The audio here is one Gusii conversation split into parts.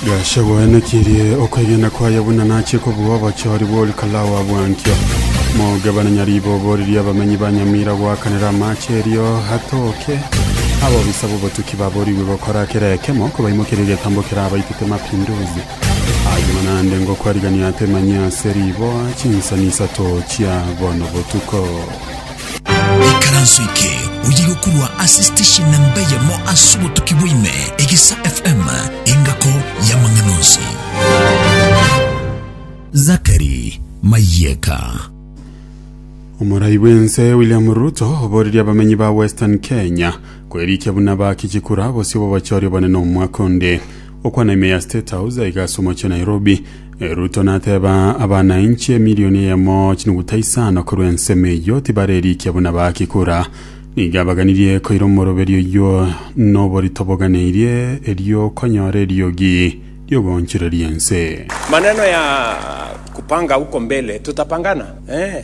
Gachagua aenekirie okwegena kwaye buna nachie kobua obochori bw'Olikalao wa Bwankio. Mogabane Nyariiba oboririe abamenyi ba Nyamira goakanera amache erio atooke. Abobisa b'obotuki baborigwe gokora kera ekemo kobaimokeria egetambo kerabaitete mapinduzi. Ayio naende ngokwarigania atemanyie ase riboa chinsani isato chia bono botuko. Ikaranso eke oyige korwa ase station namba eyemo ase obotuki bwaime, Egesa FM, engako y'amang'ana onsi. Zakari Mayeka. Omorai bw'ense William Ruto oboreria abamenyi ba Western Kenya kwerikia buna bakichikura bosio bobochori obonene omwaka onde. Okwana ime ya State House aiga ase omochie wa Nairobi, Ruto nateba abanainchi emilioni eyemo chinuguta isano korwa ensemo eyio tibarerikia buna baaki kura. Nigo abaganirie koira omoroberio oyio noborito boganeirie erio konyora eriogi riogoonchoreria ense. Maneno ya kupanga huko mbele tutapangana ee.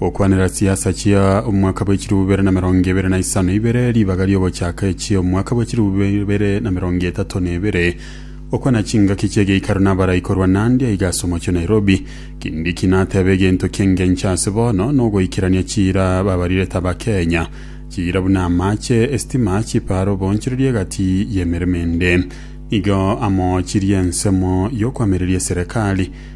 Gokwanera chiasa chia omwaka bwe chirubu bibere na merongo ebere na isano ibere, ribaga ri'ogochaka echia omwaka bwe chirubu bibere na merongo etato na ebere. Gokwana chingaki chi'egeikaro nabarai korwa Nandi aiga ase omochie Nairobi. Kindiki natebe egento ki'engencho ase bono nogoikerania chiira babarire taba Kenya. Chiira buna amache, estima, chiparo, obonchoreria egati y'emeremo ende nigo amo chiri ensemo y'okoamereria eserekari.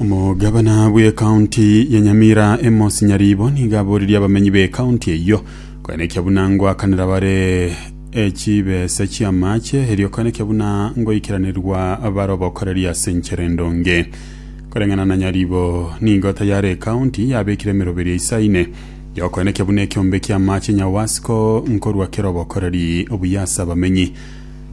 omogabana bw'ekaunti ya nyamira emos nyaribo nigo aboririe abamenyi b'ekaunti eyio koenekia buna ngoakanera bare echibesa chi'amache erio koenekia buna ngoikeranirwa bare obokoreri ase enchere ndonge koreng'ana na nyaribo nigo tayare ekaunti yabekire emeroberi eisaine yokoenekia buna ekiombe ki'amache nyawasco nkorwa kere obokoreri obuya ase abamenyi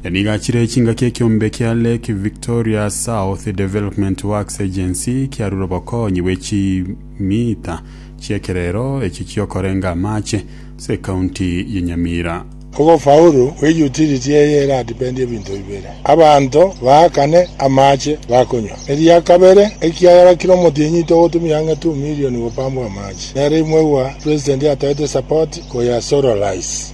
Na nigo achire chingaki ekiombe kia Lake Victoria South Development Works Agency kiarure obokonyi bwe chimita chi'ekerero eki ki'okorenga amache ase ecounty ye Nyamira. Ogofaulu gwe utility eye era depend ebinto bibere, abanto baakane amache bakonywa, eria kabere ekiagera kira omotienyi togotumia ang'e two million gopambwa amache, nere imwegwa president atoete support koya solarize.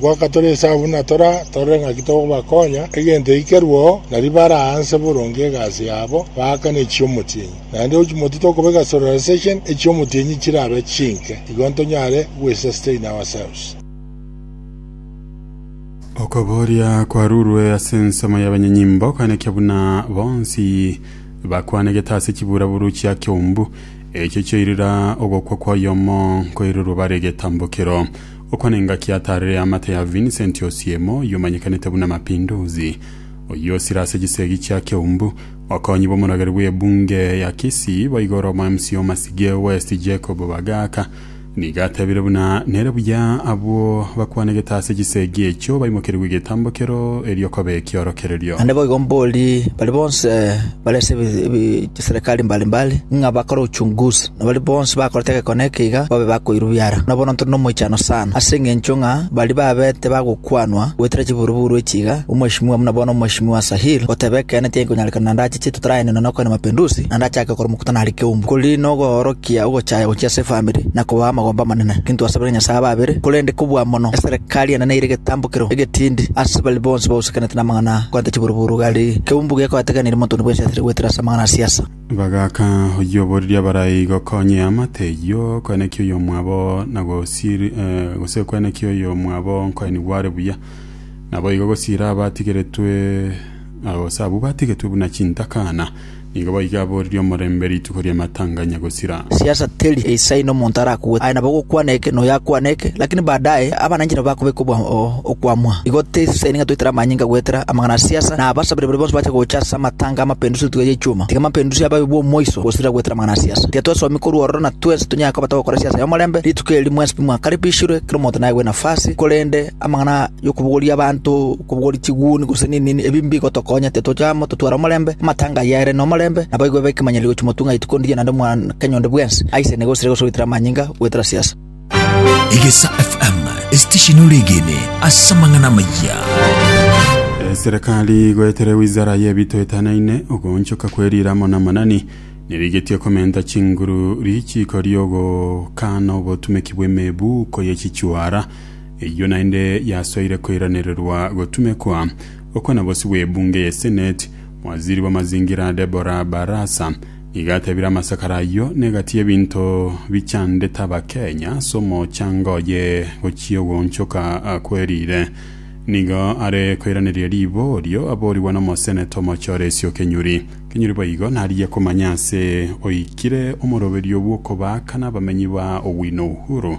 Goka tore inse abwo na tore, torore ng'aki tokobakonya, egento eikerweo na ribare aanse boronge egasi yabo, baakane echi'omotienyi. Naende ochimoti tokobeka solarization, echi'omotienyi chirabe chinke, igo ntonyare gwesustain ourselves. Okoboria kwarurwe ase ensemo y'abanyenyimbo koenekia buna bonsi bakwanegete ase chiburaburu chia Kiombu. Echio chioirera ogokwa kw'oyomo nkoirerwe bare egetambokero. Oko nengaki ataarire amate ya Vincent Osiemo, oyio omanyekanete buna Mapinduzi, oyio osire ase chisegi chia Keumbu. Mokonyi bw'omorageri bw'ebunge ya Kisii boigoro omo mca o Masige West Jacob Bagaka nigo atebire buna nere buya abwo bakwanegete ase chisegi echio baimokerigwe egetambo kero erio kobe ekiorokererio. Naende boigo mborie baria bonse bare ase ebi- ebi- chiserekari mbalimbali ng'a bakore uchunguzi. na baria bonsi bakorete egekone ekeiga babe bakoirubia ara. Na bono ntore nomoichano sana, ase engencho ng'a baria babete bagokwanwa goetera chiburuburu echi iga, omweshimiwa buna bono omweshimiwa Asahir, goteba ekeene tigenkonyarekana na ndache chie totaraenenwa na okoina mapendusi, na ndachake gokora omokutano are keumbu, kori nogoorokia ogochaya gochia ase efamiri, na kobaa amagombe amanene. Tintwasabire Nyasae abe abere, korende kobua mono eserekari enene eire egetambokero egetindi ase baria bonsi bausekanete namang'ana aa, koenta chiburuburu gari keumbu gekoetegeneria montwe one bw'esiasiri goetera ase amang'ana a siasa. Bagaaka oyio oboriri abarai gokonyia amate eyio okwenekia oyomwabo na gosiri eh, gose okwenekia oyomwabo nkoenigwa are buya. Naboigo gosira abatigeretwe ah, gose abwo batigetwe buna chintakana, nigo boigo aboriri omorembe rituko ri'amatanganya gosira. siasa teri ensa ime omonto arakwe, aye nabo ogokwana eke na oyo akwane eke, lakini baadaye abananchete nabo bakobeka okwamwa. Igo tisaini ng'a toitere amanyinga goetera amang'ana a siasa, na abasabire baria bonsi bache gocha ase amatanga ’amapendusi n'etukia y'echuma. Tiga amapendusi ababe bw'omoiso gosira goetera amang'ana a siasa. Tiga twesomi korwa ororo na twensi tonyare koba togokora siasa y'omorembe, rituko eri mwensi bimwakaribishirwe, kera omonto naegwe nafasi, korende Amang'ana y'okobogoria abanto, okobogoria chiguni, gose nenini, ebi mbigotokonya, tetoche amo, totware omorembe, amatanga aye aire nomorembe, na baigwe b'ekemanyero gochia motwe ng'a rituko ndiria naende omwaka nyonde bwensi, aisene gose ere gose goetera amanyinga, goetera siasa. Egesaa FM, esitesheni oregene ase amang'ana amaya. Eserekari goetera ewizara y'ebito etanaine ogoonchoka kwerira amo namanani nerigetie komenta chinguru richiiko riogokaana obotumeki bw'emebuko ye chichuara Eyio naende yasoire koiranererwa gotumekwa okwo na bosi bw'ebunge ye Senate, mwaziri bw'amazingira Debora Barasa nigo atebire amasakara ayio negati y'ebinto bichandete Abakenya ase omochango oye gochia ogoonchoka kwerire. Nigo are koiraneria riborio aborigwa n'omoseneta omochie Oresio Kenyuri. Kenyuri boigo narigia komanya ase oikire omoroberio bw'okobaaka n'abamenyi ba Owino Uhuru.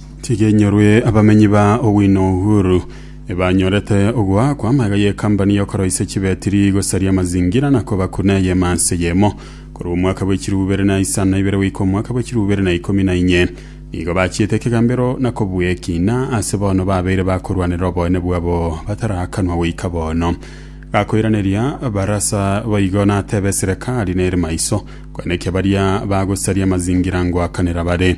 Tiga enyorwe abamenyi ba Owino Uhuru ebanyorete ogoakwa amaiga y'ekambani y'okoroisia chibetiri gosaria amazingira na kobaku na eyemo ase eyemo. Korwa omwaka bwa echirubu ibere na isano na ibere goika omwaka bwa echirubu ibere na ikomi na inye, nigo bachiete ekegambero na kobua ekina ase bono babeire bakorwanera oboene bwabo batarakanwa goika bono. Gakoiraneria Barasa boigo natebe eserekari nere maiso, kweneki abaria bagosaria amazingira ngoakanera bare.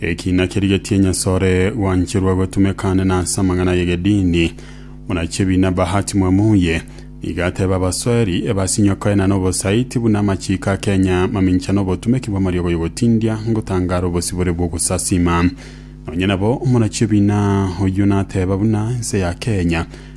Eki nakerigetie Nyasae ore gwancherwa gotumeka ande nase amang'ana y'egedini. Buna Chebi na Bahati mwamuye, nigo ateba abasweri ebasinyokoe na nobosaiti buna amachiiko a Kenya mamincha nobotumeki bw'amariogo y'ogotindia ngotangara obosibore bw'ogosasima. Nonya nabo omona chi'ebiina oyio nateba buna ense ya Kenya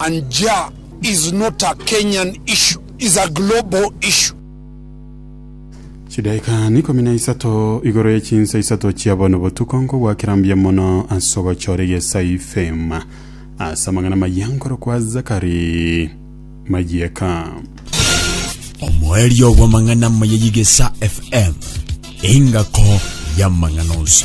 And ja is not a Kenyan issue, is a global issue. Chidaika ikomi na isato igoro ye chinsa isato chia bono botuko nkogwakera mbuya mono ase ogochora egesayifema ase amang'ana amaya nkorokwa Zakari Mayieka. Omoerio bw'amang'ana amaya y'Egesa FM, engako y'amang'ana onsi.